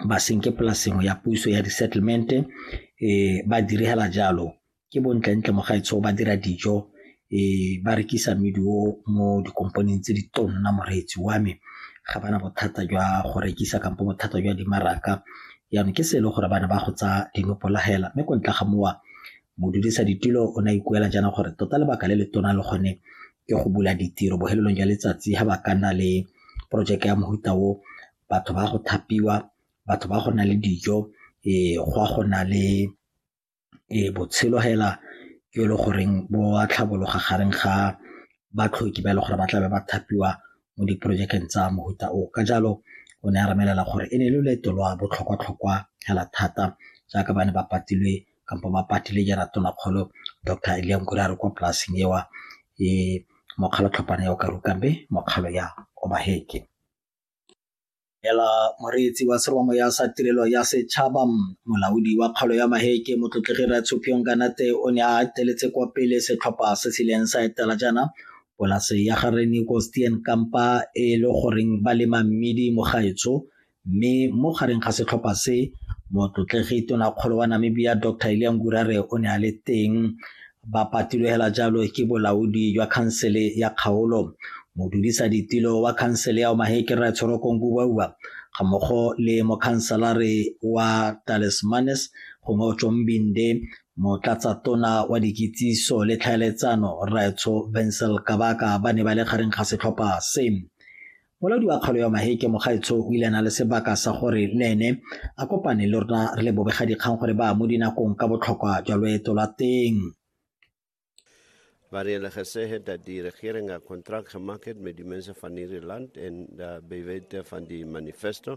ba senke polase nngwe ya puso ya di-settlement eh, ba direla jalo ke bontlentle mogaetsho ba dira dijo eh, ba rekisa meduo mo dikompaneng tse di tonna moreetsi wa me ga bana bothata jwa go rekisa kampo bothata jwa dimaraka jaanong ke se e le gore bana ba go tsa dinopolagela mme ko ntle ga mowa modudisa ditulo o ne a ikuela jaana gore tota lebaka le le tona le gone ke go bula ditiro bohelelong jwa letsatsi ga ba ka nna le porojeke ya mohuta o batho ba go thapiwa, batho ba go na le dijo, go a go na le botshelo hela jo e le goreng bo a tlhabologa gareng ga batlhoki ba e leng gore ba tlabe ba thapiwa mo diporojekeng tsa mofuta o o. Ka jalo o ne a re bolelela gore e ne e le loeto lwa botlhokwa-tlhokwa hela thata jaaka ba ne ba patilwe kampo ba patile jaana Tonakgolo Doctor Ilia Nkuri a re kwa polasing eo, mokgwa wa tlhopana ya Okaruka mme mokgwa wa ya Obaheke. Ela moreetsi wa seromamoya sa tirelo ya setšhaba molaodi wa kgaolo ya maheke motlotlegi ratshopiong kanate o ne a ateletse kwa pele setlhopha se se ileng sa etela jaana polase ya ga reniko stien kampa e le goreng ba lema mmidi mogaetsho mme mo gareng ga setlhopha se motlotlegi tonakgolo wa namibia dr eliangurare o ne a le teng Ba patilwe hela jalo ke bolaodi jwa khansele ya kgaolo, modudisa ditilo wa khansele ya Omaheke Rre Tshorokong Kubauba ga mmogo le mokhanselare wa Talismanis gongwe Ochombinde, motlatsatona wa dikitsiso le tlhaeletsano Rraetsho Vensel Kabaka ba ne ba le gareng ga setlhopha se. Molaodi wa kgaolo ya Maheke Mogaetsho o ile a na le sebaka sa gore le ene a kopane le rona re le bobegadikgang gore ba mo dinakong ka botlhokwa jwa loeto lwa teng. waar hulle gesê het dat die regering 'n kontrak gemaak het met die mense van hierdie land en uh, by wete van die manifesto